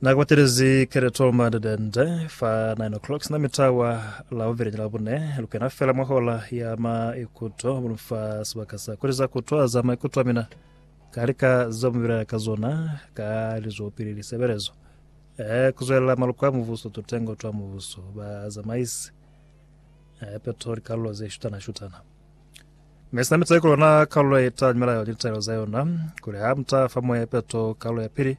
Nakubatilezi Kereto Mandedende fa 9 o'clock sina mitawa la uvele ni labune lukena fela mwa hola ya maikuto mulu fa sebaka sa kuliza kutwa za maikuto amina kalika za mubilela ka zona ka lizo pili lisebelezo eh kuzwela maluko a muvuso tutengo twa muvuso ba zamaisi eh peto likallo ze shutana shutana Mi sina mi tayi ku lona kalulo ye ta nyumelayo ni litaelo za yona, kuli ha mu ta fa Moya Peto kalulo ya pili,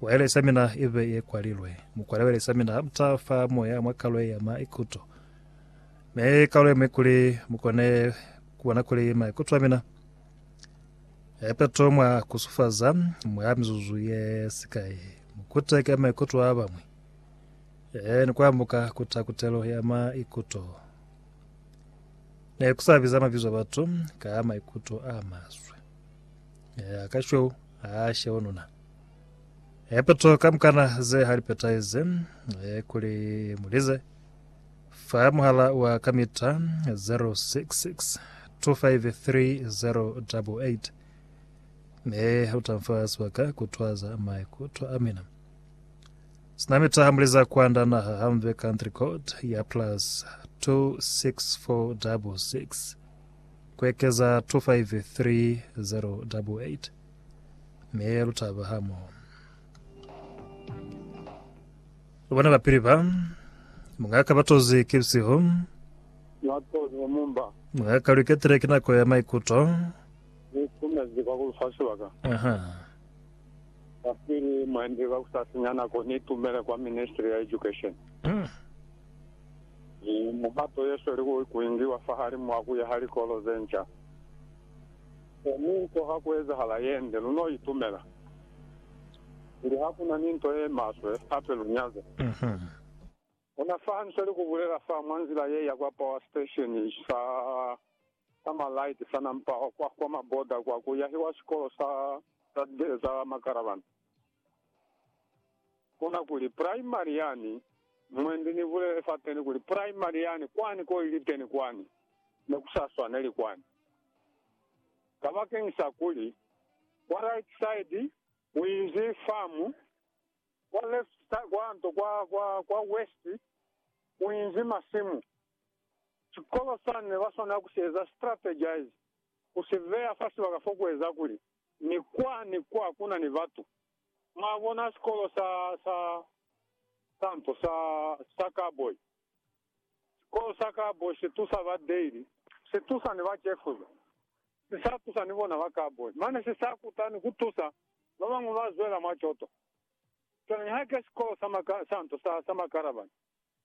waelesi ya mina i be ye kwalilwe. Mu kwale waelesi ya mina, mu ta fa Moya mwa kalulo ye ya maikuto. Mi kalulo ye ñwi kuli mu kone ku bona kuli maikuto a mina ya peto mwa ku sufaza mwa mizuzu ye sikai. Mu kuteke maikuto a ba ñwi, e, ni ku ambuka kuta kutelo ya maikuto. Ne ku sa biza mabizo a batu ka maikuto a maswe. Ya ka shweu a sheo nuna. E peto ka mukana ze ha lipetaize e kuli mulize fa muhala wa kamita 066 253088 me utamfa swaka kutwaza maikuto amina Sina mita ha muleza kwanda naha hamve country code ya plus 26466 kuekeza 253088 me lutaba hamo. Lubona bapili ba mungaka batozi ke bisihu mungaka luketile ke nako ya maikuto. Aha. Kapili, Mwendi ka ku sa sinya nako ni itumele kwa Ministry ya Education ni muhato ye sweli ku ingiwa fahalimu wa ku yaha likolo ze nca. Kono nto ha ku ezahala ye nde, lu n'o itumela. Kuli ha ku na ni nto ye maswe, hape lu nyaza. Ona fa hande sa li ku bulela fa mwa nzila ye ya kwa power station sa Summer Light sa Nampaho kwa kwa Maboda kwa ku yahiwa sikolo sa za libele za makarabana. Kona kuli, Primary yani, mwendi ni bulele fateni kuli, Primary yani kwani ko ili teni kwani, ne ku sa swaneli kwani. Kabakeñisa kuli, kwa right side ku inzi famu, Kwa left, kwa nto, kwa, kwa, kwa west, kuinzi masimu. Sikolo sani nebaswanela kusieza, strategize, kusiveya fa sibaka fokueza kuli ni kwa ni kwa hakuna ni batu. Mwabona, sikolo sa, sa, sa nto, sa, sa cowboy. Sikolo sa Kabo si tusa ba Daly, si tusa ni ba Cefuza, si sa tusa ni bona ba Cowboy, mane si sa kuta ni ku tusa ba bañwi ba zwela mwa coto. Cwale nihaike sikolo sa maka, sa nto sa, sa makarabani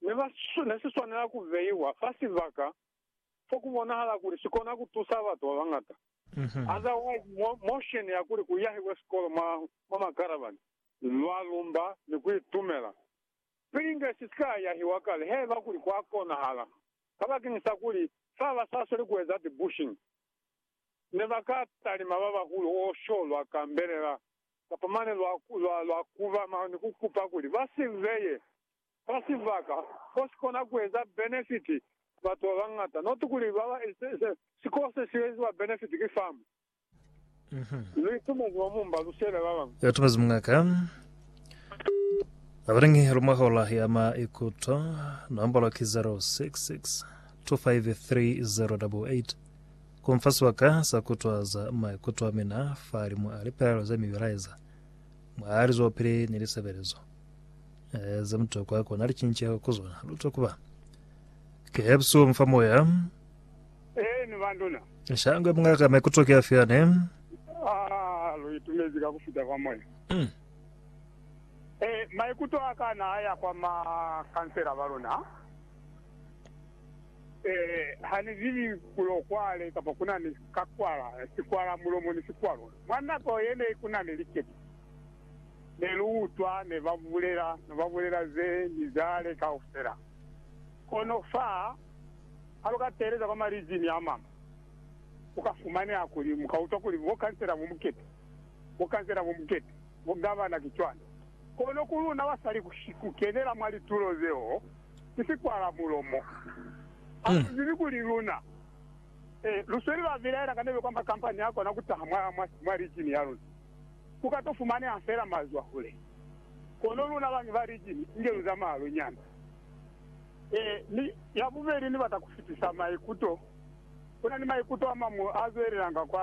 ne ba, ne si swanela ku beiwa fa sibaka fo ku bonahala kuli si kona ku tusa batu ba bañata. Otherwise, mo, motion ya kuli ku yahiwe sikolo mwa, mwa makarabani, lwa lumba ni ku itumela Pilinge si si ka yahiwa kale haiba kuli kwa konahala, kabakeñisa kuli fa ba sa sweli ku eza ti-bushing, ne ba ka talima ba bahulu o sho lwa Canberela kapa mane lwa, lwa, lwa kuba ma ni ku kupa kuli ba si beye fa sibaka fo si kona ku eza benefiti batu ba bañata, not kuli ba ba, se, se, sikolo se si eziwa benefiti ki famu. Lu itumezi mwa mumba lu siyela ba bañwi. Ya tumezi muñ'a ka. Abalingi lu mwa hola ya ma ikuto. Nombolo ki 0662533088. Ku mfa sibaka sa ku twaza maikuto a mina fahali mwa lipelaelo za mibilaeza, mwa lizwelopili ni lisebelezo ze mutokwa ku na licinceho ku zona. Lu twa ku ba ki hebusi wo mu fa moya. Ee, ni banduna. Shangwe mungaka maikuto ki afi ane? Ah, lu itumezi ka ku fita kwa moya. Mm. Eh, maikuto a ka na a ya kwa ma kansela ba luna. Eh, ha ni zibi kulo kwale kapa ku na ni kakwala, sikwala mulomo ni sikwalo. Mwa nako ye ne ku na ni likete, ne lu utwa ne ba bulela, ne ba bulela ze ni zale kaufela. Kono fa Ha lu ka teeleza kwa malizimi a mañwi, ku ka fumaneha kuli mu ka utwa kuli bokhansela bo mukete, bokhansela bo mukete, bogavana ki cwani. Kono ku luna basali ku kenela mwa litulo zeo ki sikwala mulomo. Ha lu zibi kuli luna ee, lu sweli lwa bilaela ka nebe kwa makampani a kona ku taha mwa, mwa lijini ya luna. Ku ka to fumaneha fela mazwahule. Kono luna bañwi ba lijini, inge lu zamaya lu nyanda. Ee, mi ya bubeli ni bata ku fitisa maikuto. Ku na ni maikuto a mañwi a zwelelanga kwa